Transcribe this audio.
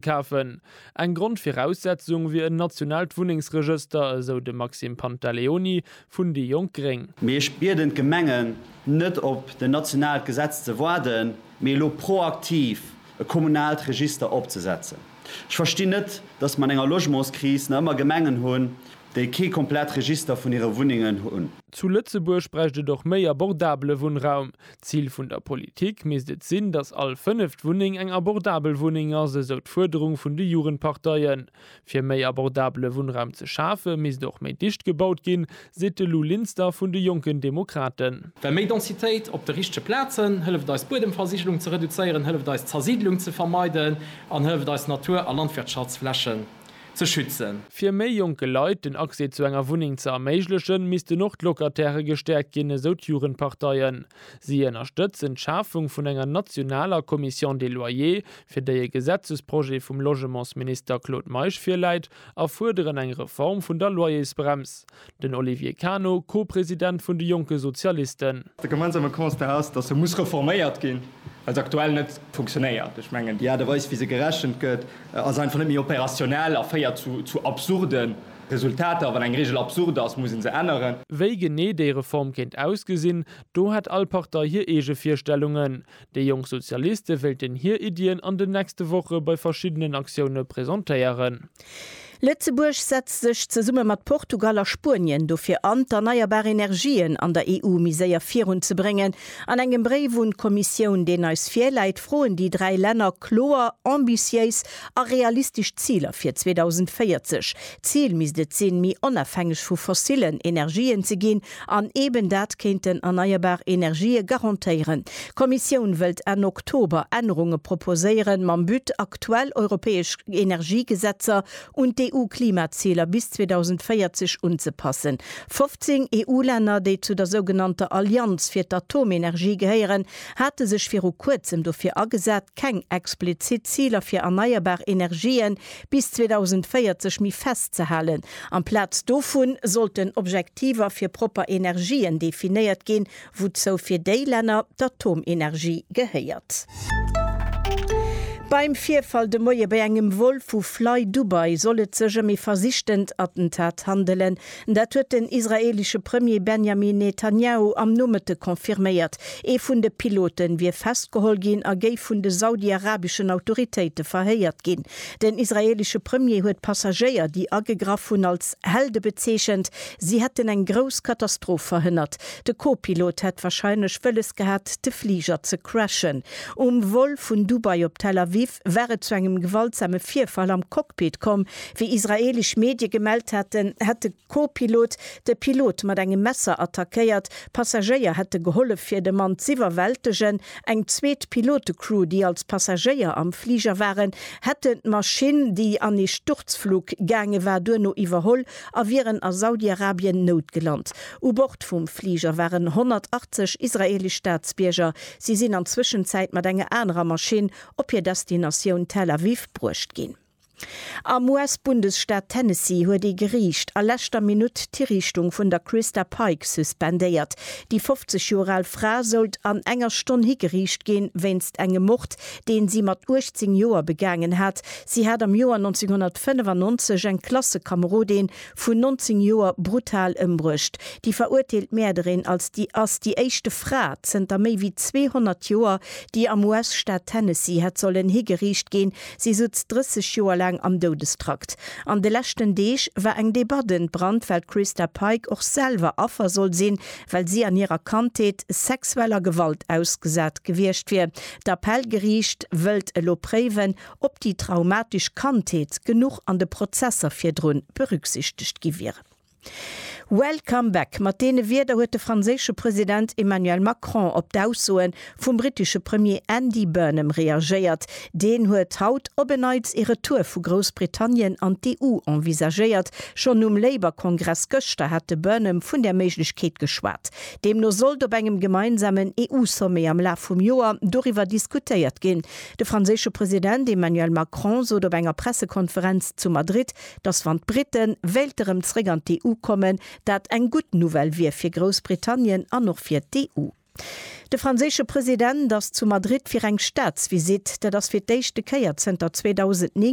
Kafen. Eng Grondviraussetzung wier en nationaalt Wunnengsregëster, esou de Maxime Pantaleoni vun déi jonk gréng. Mee ech bieden d'Gemengen, net op den nationaalt Gesetz ze waarden, mee elo proaktiv e kommunaalt Register opzesetzen. Ech verstinn net, datt mer an enger Logementskris nach ëmmer Gemengen hunn, déi kee komplett Register vun hire Wunnengen hunn. Zu Lëtzebuerg bräicht et och méi abordabele Wunnraum. D'Zil vun der Politik misst et sinn, datt all fënneft Wunneng eng abordabel Wunneng ass, esou d'Fuerderung vun de Jugendparteien. Fir méi abordabele Wunnraum ze schafe misst och méi dicht gebaut ginn, seet de Lou Linster vun de Jonken Demokraten. Well méi Densitéit op de richtege Plazen hëlleft eis Buedemversigelung ze reduzéieren, hëlleft eis d'Zersiidlung ze vermeiden an hëlleft eis Natur a Landwirtschaftsflächen ze schützen. Fir méi jonke Leit den Accès zu enger Wunneng ze erméiglechen, missten och d'Locatairë gestäerkt ginn, esou d'Jugendparteien. Si ënnerstëtzen d'Schafung vun enger nationaler Commission des loyers, fir déi e Gesetzesprojet vum Logementsminister Claude Meisch virläit, a fuerderen eng Reform vun der Loyersbrems. Den Olivier Cano, Co-President vun de jonke Sozialisten. De gemeinsame Constat ass, datt se muss reforméiert ginn, well se aktuell net funktionéiert. Ech mengen, déi Aart a Weis, wéi se gerechent gëtt, ass einfach net méi opérationnel a féiert zu absurde Resultater. Wann eng Reegel absurd ass, muss ee se änneren. Wéi genee déi Reform kéint ausgesinn, do hätt all Partei hir eege Virstellungen. Déi jonk Sozialiste wéilten hir Iddien an den nächste Woche bei verschiddenen Aktioune presentéieren. Lëtzebuerg setzt sech zesumme mat Portugal a Spuenien dofir an, d'erneierbar Energien an der EU méi séier virun ze bréngen. An engem Bréif un d'Kommissioun, deen eis virläit, froen déi dräi Länner kloer, ambitiéis a realistesch Ziler fir 2040. D'Zil misst et sinn, méi onafhängeg vu fossilen Energien ze ginn An eben dat kéinten erneierbar Energië garantéieren. D'Kommissioun wëllt Enn Oktober Ännerunge proposéieren, mam But, aktuell europäesch Energiegesetzer un d'EU-Klimaziler bis 2040 unzepassen. 15 EU-Länner, déi zu der sougenannter Allianz fir d'Atomenergie gehéieren, hate sech viru kuerzem dofir agesat, keng explizit Ziler fir erneierbar Energië bis 2040 méi festzehalen. Amplaz dovu sollten Tiver fir propper Energien definéiert ginn, wouzou fir déi Länner d'Atomenergie gehéiert. Beim Virfall de Moie bei engem Vol vu FlyDubai soll et sech ëm ee versichtent Attentat handelen. Dat huet den israeelesche Premier Benjamin Netanjahu am Nomëtte confirméiert. Ee vun de Pilote wier festgeholl ginn a géif vun de saudi-arabeschen Autoritéite verhéiert ginn. Den israeelesche Premier huet d'Passagéier, déi agegraff hunn, als Helde bezeechent. Si hätten eng grouss Katastroph verhënnert. De Co-Pilot hätt warscheinlech wëlles gehat, de Fliger ze crashen. Um Vol vun Dubai op Tel Aviv war et zu engem gewaltsame Virfall am Cockpit komm. Wéi israeelesch Medie gemellt haten, hätt de. Co-Pilot, De Pilot mat engem Messer attackéiert, Passagéier hätte gehollef fir de Mann z'iwwerwältegen. Eng zweet Pilote-Crew, déi als Passagéier am Fliger waren, hätten d'Maschinn, déi an ee Sturzflug gaange war, duerno iwwerholl a wieren a Saudi-Arabien noutgelant. U Bord vum Fliger waren 180 israeelesch Staatsbierger. Si sinn an Zwëschenzäit mat enger anerer Maschinn op hir Destinatioun Tel Aviv bruecht ginn. Am US-Bundesstaat Tennessee huet ee Geriicht a leschter Minutt d'Hiriichtung vun der Christa Pike suspendéiert. Déi 50 Joer al Fra sollt an enger Stonn higeriicht ginn, wéinst engem Mord, deen si mat 18 Joer begaangen hat. Si hat am Joer 1995 eng Klassekamerodin vun 19 Joer brutal ëmbruecht. Déi verurteelt Mäerderin als déi ass déi éischte Fra zënter méi wéi 200 Joer, déi am US-Staat Tennessee hätt sollen higeriicht ginn, Si sutz 30 Joer laang am Doudestrakt. An de leschten Deeg war eng Debatt entbrannt, well d'Christa Pike och selwer Affer soll sinn, well si an hirer Kandheet sexueller Gewalt ausgesat gewiescht wier. D'Appellgeriicht wëllt elo préiwen, ob déi traumatesch Kandheet genuch an de Prozesser virdrun berücksichtegt gi wieren. Welcome back, mat deene Wierder huet de franséische President Emmanuel Macron op d'Aussoe vum brittesche Premier Andy Burnham reagéiert. Deen huet haut op en Neits ee Retour vu Groussbritannien an d'EU envisagéiert. Schonn nom Labour-Kongress gëschter hat de Burnham vun där Méiglechkeet geschwat. Deemno sollt op engem gemeinsamen EU-Sommet am Laf vum Joer doriwwer diskutéiert ginn. De franséische President Emmanuel Macron sot op enger Pressekonferenz zu Madrid, dass wann d'Brite wéilte rëm zréck an d'EU kommen, dat eng gutt Nouvelle wier fir Groussbritannien an och fir d'EU. De franséische President ass zu Madrid fir eng Staatsvisitt. Dat ass fir d'éischte Kéier zënter 2009,